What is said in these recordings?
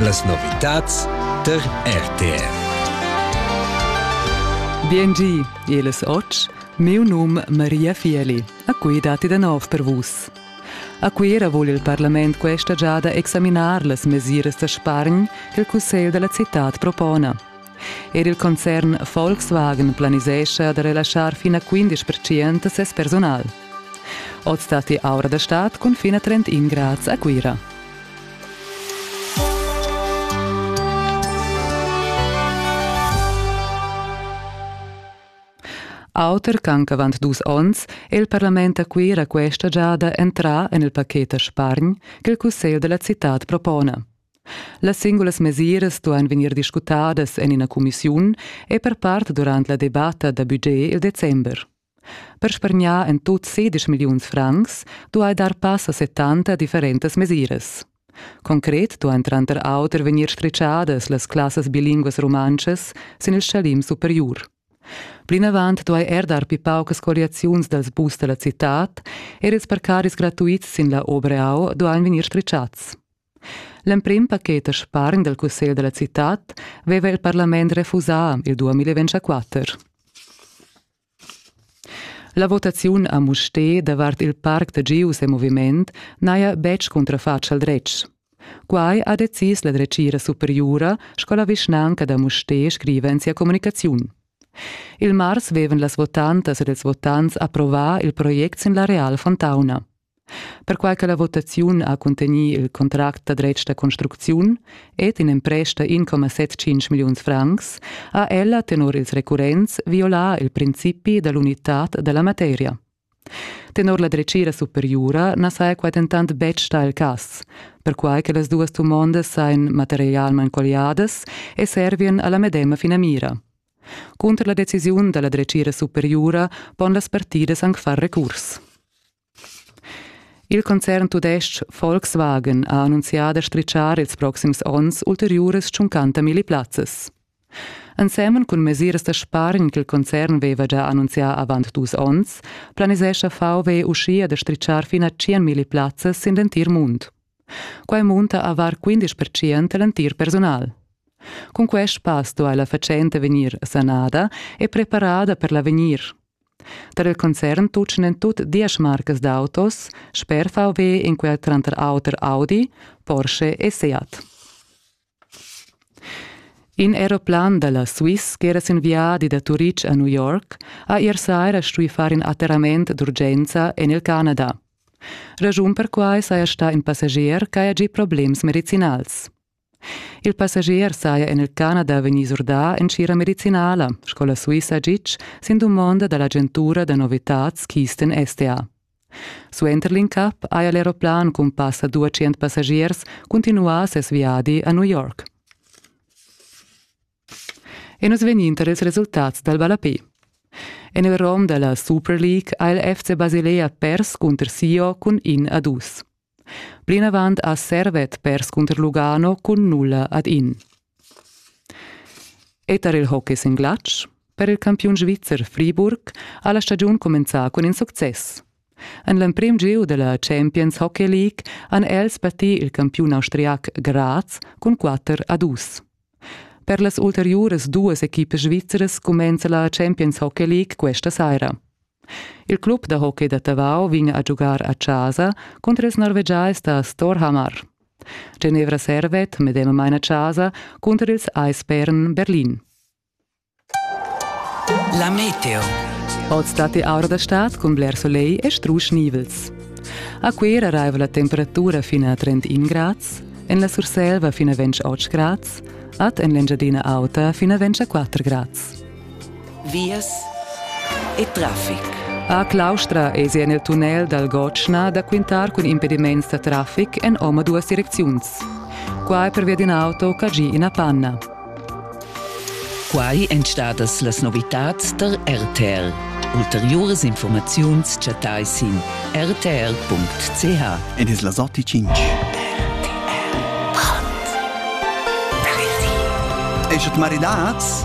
Las novitads tar RTR. Biengi, el es och. Miu num Maria Fieli. A cui datti da nov per vus. A Cuira vul il parlament questa giada examinar las mesiras da spargn che il Cussegl della città propona. Er il concern Volkswagen planisescha da relaschar fin a 15% ses personal. Oz stati aura da stad cun fin a 31 grads a Cuira. Auter ch'anc avant dus onns è il parlament a Cuira questa giada entrà en il paket a Spargn ch'il cussegl da la citad propona. Las singulas mesiras stuan vegnir discutadas en ina cumissiun e per part durant la debatta da budget il december. Per spargnar en tut sedisch milliuns francs duai dar pass a 70 differentas mesiras. Concret duain tranter auter vegnir stritgadas las classas bilinguas rumantschas sin il schalim superiur. Plinavant duai er dar pli paucas colliaziuns dals bus da la citad er ils parcadis gratuits sin la Obreau duain vegnir stritgads. L'emprim paket da spargn dal cussegl da la citad veva il parlament refusà il 2024. La votaziun a Mustér davart il parc da Gius e moviment n'haja betg cuntrafatg al dretg. Quai ha decis la dretgira superiura sco la vischnanca da Mustér scriva en sia communicaziun. Il mars vevan las votantas ed ils votants approvà il project sin l'areal Fontauna. Perquai che la votaziun ha cuntegnì il contract da dretg da construcziun ed in emprest da 1,75 milliuns francs, ha ella tenor ils recurrents violà il principi da l'unitad da la materia. Tenor la dretgira superiura na saja quai dentant betg stà il cas, perquai che las duas dumondas sajan materialmain colliadas e servian a la medema finamira. Cunter la decisiun dalla dretgira superiura pon las partidas anc far recurs. Il concern tudestg Volkswagen ha annunzià da stritschar ils proxims onns ulteriuras 50 milli plazzas. Ensemen cun mesiras da spargn ch'il concern veva già annunzià avant dus onns, planisescha VW uschia da stritschar fin a 100 milli plazzas sin l'entir mund. Quai munta a var 15 percent l'entir personal. Cun quest pass duai la fatschenta vegnir sanada e preparada per l'avegnir. Tar il concern tutgan tut diesch marcas d'autos sper VW in quel tranter auter Audi, Porsche e Seat. In aeroplan da la Swiss ch'era sin viadi da Turitg a New York ha ier saira stuì far in atterrament d'urgenza en il Canada. Raschun per quai saja stà in passagier ch'haja gì problems medicinals. Il passagier saja en il Canada vegnì surdà en tgira medicinala, sco la Suissa Gitg, sin dumonda da l'agentura da novitads Kisten STA. Suenter l'incap haja l'aeroplan cun passa 200 passagiers cuntinuà ses viadi a New York. E nus vegnin tar ils resultats dal ballapè. En il rom da la Super League ha il FC Basilea pers cunter Sio cun in a dus. Plinavant ha servet perscunter Lugano cun nulla ad in. E tar il hockey sin glatsch per il campiun svizzer Friburg ha la stagiun cumenzà cun in success. En l'emprim gieu da la Champions Hockey League han els battì il campiun austriac Graz cun 4 a 2. Per las ulteriuras duas equipas svizras cumenza la Champions Hockey League questa saira. Il club da hockey da Tavau vegn a giugar a casa cunter ils norvegiais da Storhamar. Genevra servet medemamain a casa cunter ils Eisbären Berlin. La meteo. Oz dat aura da stad cun bler solegl e strusch nivels. A Cuera raiva la temperatura fin a 31 grads, en la Surselva fin a 28 grads, ad en l'Engiadina Auta fin a 24 grads. Vias e traffic. A Claustra esi en il tunnel dal Gotschna da quintar cun impediments da traffic en omaduas direcziuns. Qua è pervia d'in auto cagì ina panna. Quai èn stadas las novitads tar RTL. Ulteriuras informaziuns chattai sin rtr.ch. Ed es la sorti 5. Eschet maridats?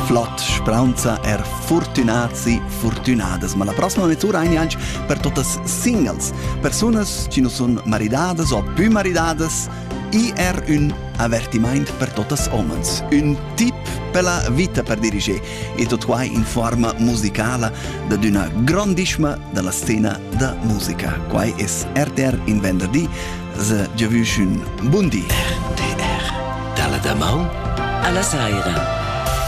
Flott, spranza er fortunati, fortunadas, ma la prossima mezz'ura ein anche per totas singles, persunas che non sono maridadas o più maridadas, I era un avertimaint per totas homens, un tip per la vita per diriger e tot quai in forma musicala dad una grandissima della scena da musica. Quai es RTR in venderdi, se giavüsch un buon di. RTR, dalla da maun alla saira.